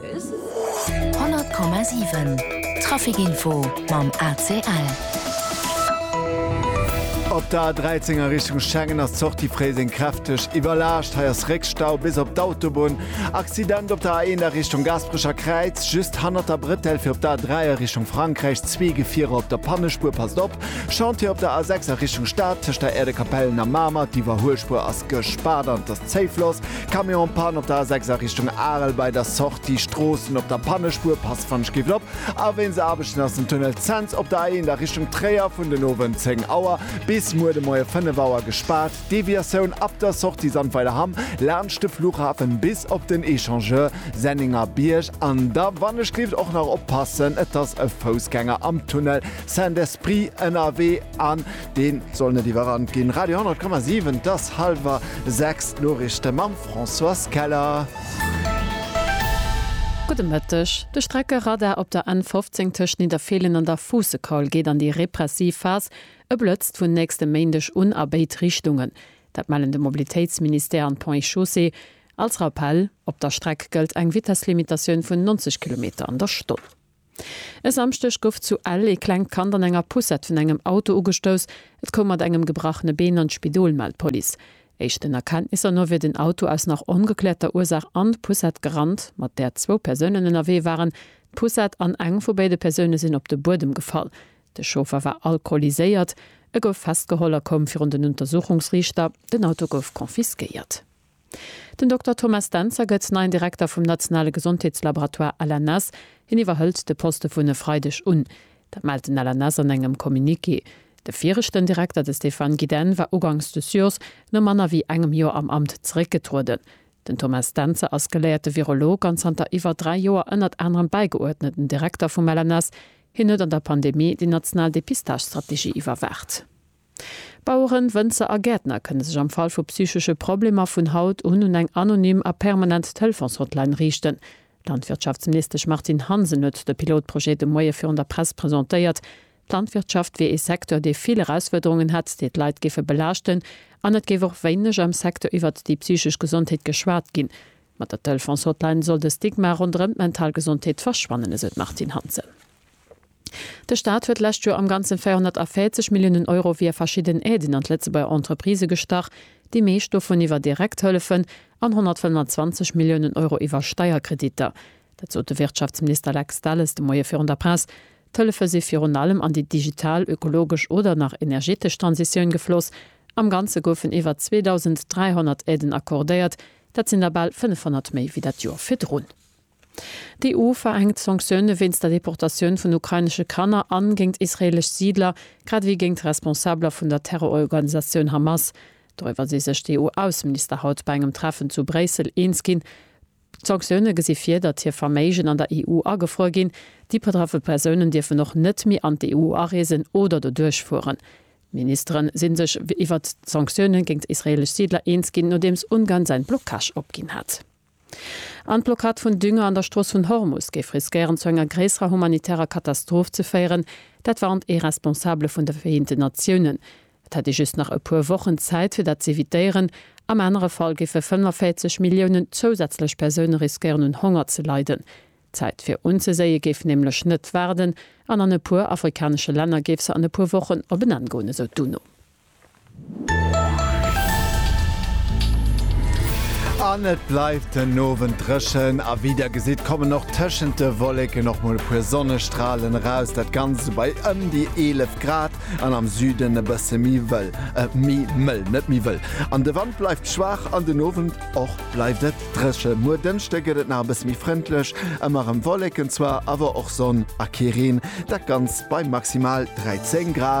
100,7 Traficinfo mam ACL. Op der A 13 a Richtung Schengen ass d'Sortie Fréiseng kräfteg iwwerlaascht. Hei ass Réckstau bis op d'Autobunn. Accident op der A 1 a Richtung Gaasperecher Kräiz, just hannert der Bretelle fir op der A 3 a Richtung Frankräich. Zwee Gefierer op der Pannespuer, passt op! Chantier op der A 6 a Richtung Stad, tëscht der Äerdekapellen a Mamer. D'Iwwerhuelspuer ass gespaart an et ass zéi Floss. Camion en panne op der A6 a Richtung Arel bei der Sortie Stroossen op der Pannespuer, passt wann ech géif lop a wéinst Aarbechten ass den Tunnel Cents op der A1 a Richtung Tréier vun den Owend 10 Auer bis muer de Moie 5 Auer gespaart. Deviatioun ab der Sortie Sandweiler Hamm laanscht de Flughafen bis op den Echangeur Senninger Bierg an da wann ech géift och nach oppassen et ass e Foussgänger am Tunnel Saint-Esprit ënnerwee an Deen soll net iwwerrannt ginn. Radio 10,7 't ass halwer 6 d'Noriichte mam Françoise Keller. Gudde Mëtteg. De Streckeradar op der N 15 tëscht Nidderfeelen an der Fuussekaul geet an déi repressiv Phas. E blëtzt vun nächstem Méindeg un a béid Richtungen. Dat mellen de Mobilitéitsministère an d'Ponts et Chaussées. Als Rappell, Op der Streck gëllt eng Vitesslimitatioun vun 90 Kilometer an der Stonn. E Samschdeg gouf zu Ell ee klengt Kand an enger Poussette vun engem Auto ugestouss. Et koum mat engem gebrachene Been an d'Spidol, mellt d'Police. Éischten Erkenntnisser no wier den Auto aus nach ongekläerter Ursaach an d'Poussette gerannt, mat där zwou Persounen ënnerwee waren. D'Poussette an eng vu béide Persoune sinn op de Buedem gefall. De Chauffer war alkoholiséiert. E gouf festgeholl a koum virun den Untersuchungsriichter. Den Auto gouf confisquéiert. Den Dokter Thomas Dentzer gëtt neien Direkter vum nationale Gesondheetslaboratoire LNS. Hien iwwerhëlt de Poste vun e Freideg un. Dat mellt den LNS an engem Communiqué. De viregten Direkter, de Stéphane Guidenne, war ugangs des Jours no manner wéi engem Joer am Amt zeréckgetrueden. Den Thomas Dentzer ass geléierte Virolog an zanter iwwer dräi Joer ënnert anerem bäigeuerdneten Direkter vum LNS. Hien huet an der Pandemie déi national Depistagestrategie iwwerwaacht. Baueren, Wënzer a Gäertner kënne sech am Fall vu psychesche Problemer vun haut un un eng anonym a permanent Telefons-Hotline riichten. D'Landwirtschaftsministesch Martine Hansen huet de Pilotprojet de Moie virun der Press presentéiert. D'Landwirtschaft wier ee Secteur, dee vill Erausfuerderungen hätt, déi d'Leit géife belaaschten an et géif och wéineg am Secteur iwwert déi psychesch Gesondheet geschwat ginn. Mat der Telefons-Hotline soll de Stigma ronderëm d'mental Gesondheet verschwannen, esou d'Martine Hansen. De Staat huet d'lescht Joer am Ganzen 440 Milliounen Euro via verschidden Aiden an d'Lëtzebuerger Entreprisë gestach, déi meescht dovun iwwer direkt Hëllefen an 125 Milliounen Euro iwwer Steierkreditter. Dat sot de Wirtschaftsminister Lex Delles de Moie virun der Press. D'Hëllefe si virun allem an déi digital, ökologesch oder nach energetesch Transitioun gefloss. Am Ganze goufen iwwer 2.300 Aiden accordéiert, dat sinn der bal 500 méi wéi dat Joer virdrun. D'EU verhänkt Sanktioune wéinst der Deportatioun vun ukrainesche Kanner an géint israeelesch Siidler, grad ewéi géint Responsabeler vun der Terrororganisatioun Hamas. Doriwwer si sech d'EU-Ausseminister haut bei engem Treffen zu Bréissel eens ginn. D'Sanktioune gesi vir, datt hir Verméigen an der EU agefruer ginn. Déi betraffe Persounen dierfen och net méi an d'EU areesen oder doduerch fueren. D'Ministere si sech iwwert d'Sanktioune géint israeelesch Siidler eens ginn, nodeems Ungarn säin Blockage opginn hat. An d'Blockad vun Dünger an der Strooss vun Hormus géif riskéieren zu enger gréisserer humanitärer Katastroph ze féieren, dat warnt ee Responsabele vun de Vereenten Natiounen. Et hätt ee just nach e puer Wochen Zäit fir dat z'evitéieren. Am anere Fall géife 45 Milliounen zousätzlech Persoune riskéieren un Honger ze leiden. D'Zäit fir unzeséie géif nämlech net waarden an an e puer afrikanesche Länner géif se an e puer Wochen op en Enn goen, esou d'UNO. An et bleift den Owend dréchen a wéi der gesitt, kommen och tëschent de Wolleken och mol e puer Sonnestralen eraus. Dat Ganzt bei ëm déi 11 Grad an am Süden e bësse méi wëll, méi mëll, net méi wëll. An de Wand bleift schwaach an den Owend och bleift et dréchen. Muer Dënschde gëtt et nach e bësse méi frëndlech, ëmmer erëm Wolleken zwar, awer och Sonn a kee Reen. Dat Ganzt bei maximal 13 Grad.